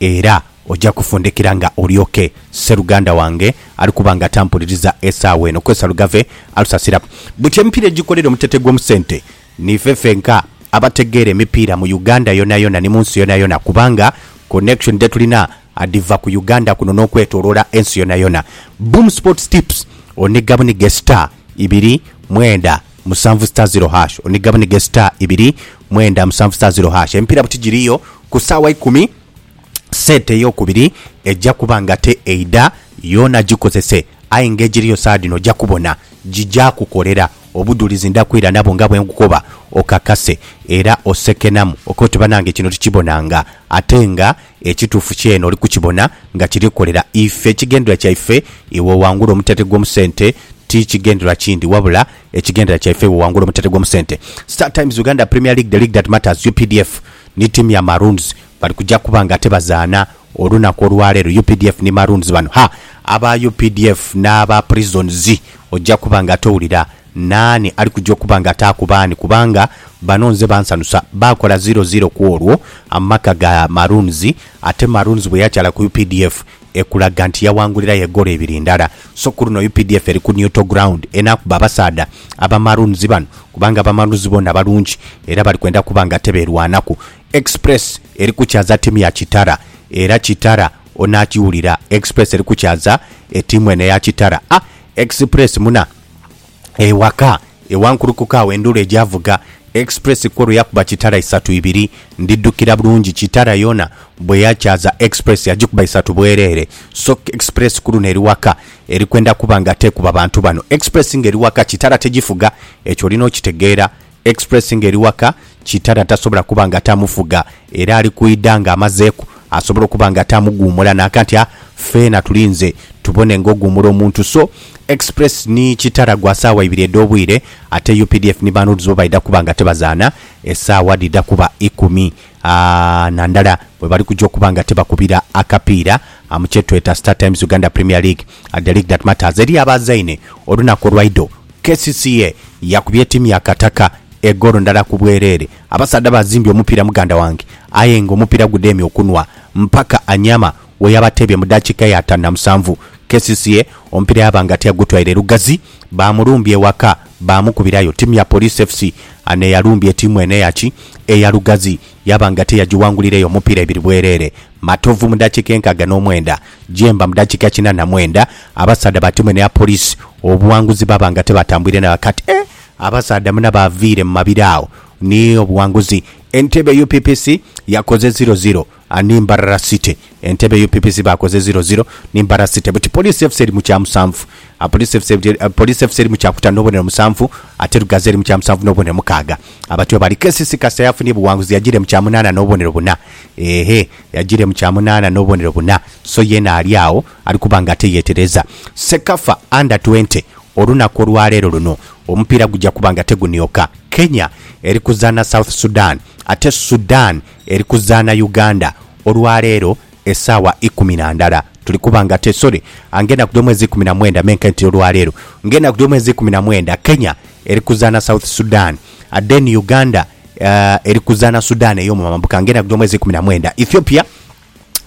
Era oja kufundikira nga olyoke sseruganda wange ali kuba nga tampuliriza esaawa eno. Kwesa Lugave alusasira buti emipiira egikolera omutete gw'omu sente. Niife fenka abategeera emipiira mu Uganda yonayona ni mu nsi yonayona kubanga connection dhe tulina adhiva ku Uganda kuno n'okwetoloola ensi yonayona. Boom Sports Tips, Oniga buniga esita ibiri, mwenda. musanvu star ziro hash oni gabani ge star ibiri mwenda musanvu star ziro hash emipiira buti giriyo ku saawa ikumi sente eyokubiri eja kuba nga te eidha yoona gikozese aye nga egiriyo saha dhino oja kubona gigya kukolera obudhulizi ndha kwira nabwo nga bwenkukoba okakase era osekenamu okobe oti banange kino tikibonanga ate nga Ekituufu kyene oli kukibona nga kiri kukolera ife. Ekigendererwa kyaife iwe owangule omuteete gw'omusente ti kigendererwa kindi wabula ekigendererwa kyaife iwe owangule omuteete gw'omusente. Star Times Uganda Premier League, The League That Matters, updf ni ttiimu ya Maroons bali kuja kuba nga ate bazaana olunaku olwaleero. Updf ni Maroons bano. Ha! Aba updf n'aba Prisons ojja kuba nga ate owulira Naani ali kuja okuba nga ataaku baani? Kubanga bano nze bansanusa. Baakola ziro ziro ku olwo amaka ga Maroons, ate Maroons bwe yakyala ku updf ekulaga nti yawangulirayo egoolo ibiri ndala. So ku luno updf eri ku neutral ground enaakuba abasaadha aba Maroons bano kubanga aba Maroons boona balungi era bali kwenda kuba nga tebeerwanaku. Express eri kukyaza tiimu ya Kitara era Kitara onaakiwulira. Express eri kukyaza etiimu eno eya Kitara. A Express muna. ewaka ewankulukuka agho endhulu egyavuga, Express kwo lwe yakuba kitala isatu ibiri. Ndidhukira bulungi kitala yoona bwe yakyaza Express yagikuba isatu bwereere. So Express ku luno eri waka eri kwenda kuba nga teekuba bantu bano. Express ng'eri waka kitala tegifuga, ekyo olina okitegeera. Express nga eri waka, Kitara tasobola kuba nga tamufuga era ali kwidha nga amazeeku asobola okuba nga tamuguumula naka nti a feena tulinze tubone nga oguumula omuntu so Express ni Kitara gwa saawa ibiri edh'obwire ate updf ni Banoodz bo baidha kuba nga tebazaana esaawa dhidha kuba ikumi a na ndala bwebali kugya okuba nga tebakubira akapiira a mu kyetweta Star Times Uganda Premier League, The League That Matters eri abaazaine olunaku olwaidho. KCCA yakubye tiimu ya Kataka egoolo ndala ku bwereere. Abasaadha bazimbye omupiira muganda wange aye nga omupiira gudheemye okunhwa mpaka Anyama we yabateebye mu daakiika ya ataanu na musanvu. KCCA omupiira yaba nga tiyagutwaire lugazi, baamulumbye ewaka baamukubirayo. Tiimu ya Police FC n'eyalumbye tiimu eno eya ki? Eya Lugazi. Yaba nga teyagiwangulireyo mupiira ebiri bwereere, Matovu mu dakiika enkaaga n'omwenda, Jemba mu dakiika kinaana mwenda, abasaadha batemwe n'eya Police obuwanguzi baba nga tebatambwire na kati. Eeh! Abasaadha muna baviire mu mabira agho ni obuwanguzi. Entebbe UPPC yakoze ziro ziro ni Mbarara City. Entebe UPPC baakoze ziro ziro ni Mbara City buti Police FC eri mu kya musanvu Police FC Police FC eri mu kya kutanu n'obubonero musanvu ate Lugazi eri mu kya musanvu n'obubonero mukaaga Abatyo bali KCC kasita yafunye buwanguzi yagiire mu kya munaana n'obubonero buna eeh yagiire mu kya munaana n'obubonero buna so yeena ali agho ali kuba nga ate yeetereza Cecafa Under twenty Olunaku olwaleero luno omupiira gugya kuba nga tegunioka Kenya eri kuzaana South Sudan ate Sudan eri kuzaana Uganda Olwa leero esaawa ikumi na ndala tuli kuba nga te sorry ngenda kudya omwezi ikumi na mwenda menke nti olwa leero ngenda kudya omwezi ikumi na mwenda Kenya eri kuzaana South Sudan then Uganda uh, eri kuzaana Sudan ey'omu mambuka ngenda kudya omwezi ikumi na mwenda Ethiopia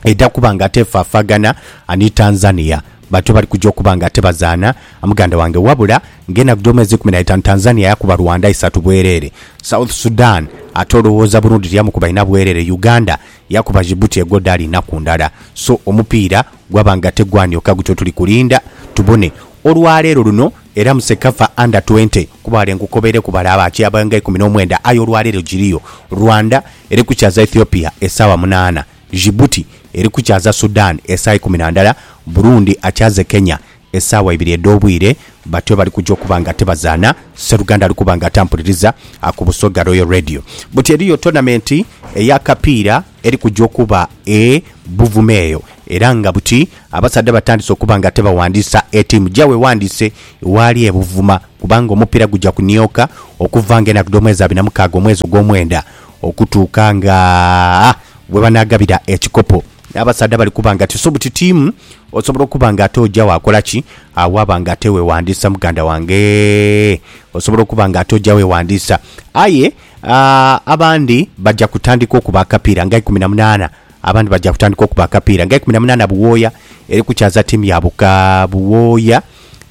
eja kuba nga te efaafagana ni Tanzania Bantu bali kuja okuba nga ate bazaana muganda wange wabula nga enaku dhomwezi ikumi naitaanu Tanzania yakuba Rwanda isatu bwerere, South Sudan ate olowooza Burundi tiyamukuba ina bwerere, Uganda yakuba Djibouti egwo dhaali inaku ndala so omupiira gwaba nga tegwanioka gutyo tuli kulinda tubone olwaleero luno era mu Cecafa under twenty kuba wale nkukobereku bale abakyaaba nga ikumi nomwenda aye olwaleero giriyo Rwanda eri kukyaza Ethiopia esaawa munaana Djibouti eri kukyaza Sudan esaawa ikumi na ndala, Burundi akyaze Kenya esaawa ibiri edh'obwire, batyo bali kuja okuba nga tibazaana, Sseruganda ali kuba nga atampuliriza ku Busoga Royal Radio. Buti eriyo tonamenti ey'akapiira eri kuja okuba e Buvuma eyo era nga buti abasaadha batandise okuba nga tibawandiisa etiimu gyaibwe ewandiise waali e Buvuma kubanga omupiira guja kunioka okuva nga enaku dh'omwezi abiri na mukaaga omwezi ogw'omwenda okutuuka nga we banaagabira ekikopo. Abasaadha bali kuba nga tiso butitiimu, osobola okuba nga ate oja waakola ki? Waaba nga ate weewandiisa muganda wange. Osobola okuba nga ate oja weewandiisa. Aye ah, abandi baja kutandika okuba akapiira nga ikumi na munaana, abandi baja kutandika okuba akapiira nga ikumi na munaana buwooya, eri kukyaza ttiimu ya Buka buwooya,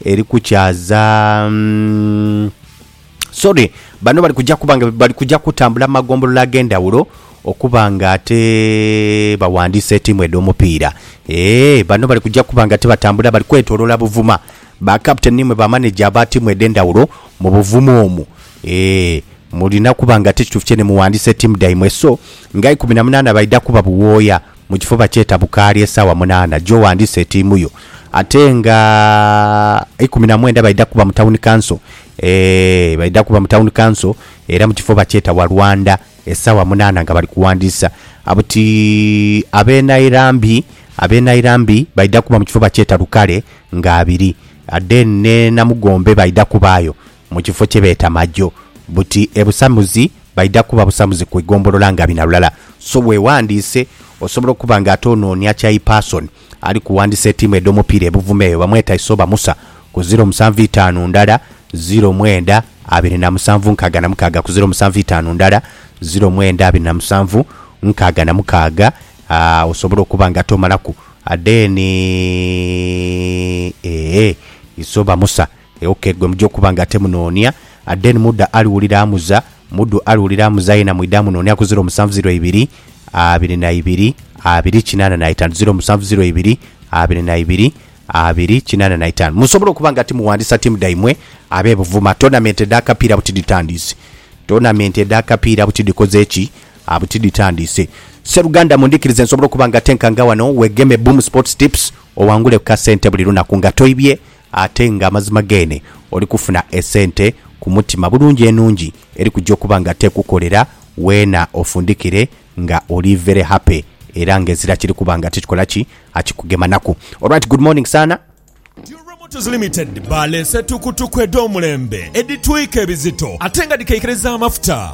eri kukyaza mm, Sorry, bano bali kuja kuba nga bali kuja kutambula mu magombolola ag'endhawulo okuba nga ate bawandiisa etiimu edh'omupiira. Eeh, bano bali kuja kuba nga ate batambula bali kwetoloola Buvuma. Ba captain ni mwe ba manager aba tiimu edh'endhawulo mu Buvuma omwo. Eeh, mulina kuba nga ate kituufu kyene muwandiisa etiimu dhaimwe. So, nga ikumi na munaana baidha kuba buwooya Mu kifuba kye tabukaali esaawa munaana gy'owandiisa etiimu yo ate nga eikumi na mwenda baidha kuba mu Town Council. Eeh baidha kuba mu Town Council era mu kifo bakyeta Walwanda esaawa munaana nga bali kuwandiisa. Buti ab'e Nairambi, ab'e Nairambi baidha kuba mu kifo bakyeta Lukale nga abiri. Then n'e Namugombe baidha kubaayo. mu kifo kye beeta Majo buti e Busamuzi baidha kuba Busamuzi ku igombolola nga bina lulala so wewandiise osobola okuba nga ate onoonia kyayi person ali kuwandisa etiimu edhomupiira e Buvuma eyo bamweta Isooba Musa ku ziro musanvu itaanu ndala ziro mwenda abiri na musanvu nkaaga na mukaaga ku ziro musanvu itaanu ndala ziro mwenda abiri na musanvu nkaaga na mukaaga aa osobola okuba nga ate omalaku then eeh Isooba Musa E ok gwe muja okuba nga ate munonia a then muda aliwulira amuza mudu aliwulira amuza yena mwide amunonia ku ziro musanvu ziro ibiri abiri na ibiri abiri kinana na itanu ziro musanvu ziro ibiri abiri na ibiri abiri kinana na itanu musobola okuba nga timuwandisa timu daimwe abe Buvuma tournament edha kapiira buti dhitandise tournament edha kapiira buti dhikoze ki buti dhitandise Sseruganda mundhikirize nsobole okuba nga ate nkanga wano wegeme Boom Sports Tips owangule ku ka sente buli lunaku nga toibye Ate nga amazima geene oli kufuna esente ku mutima bulungi enungi eri kuja okuba nga tekukolera weena ofundikire nga oli very happy era nga ezira kiri kuba nga tikikola ki akikugemanaku. Alright good morning saana. Dura Motors Limited baleese tukutuku edh'omulembe edhitwika ebizito ate nga dhikaikiriza amafuta.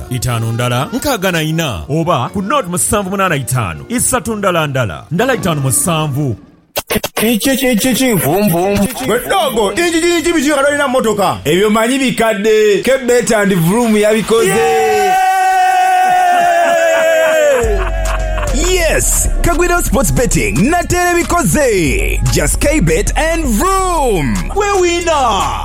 itaanu ndala nkaaga na ina, oba ku noodi musanvu munaana itaanu isatu ndala ndala ndala itaanu musanvu. Kiki kiki kinkumpum. Gwe ddogo injiji nyingi biki nga tolina mmotoka? Ebyo manyi bikadde. Ke Beta and Vroom yabikoze. Yes! Kagwidho Sports Betting nate ebikoze. Just K-Bet and Vroom! Gwe winner!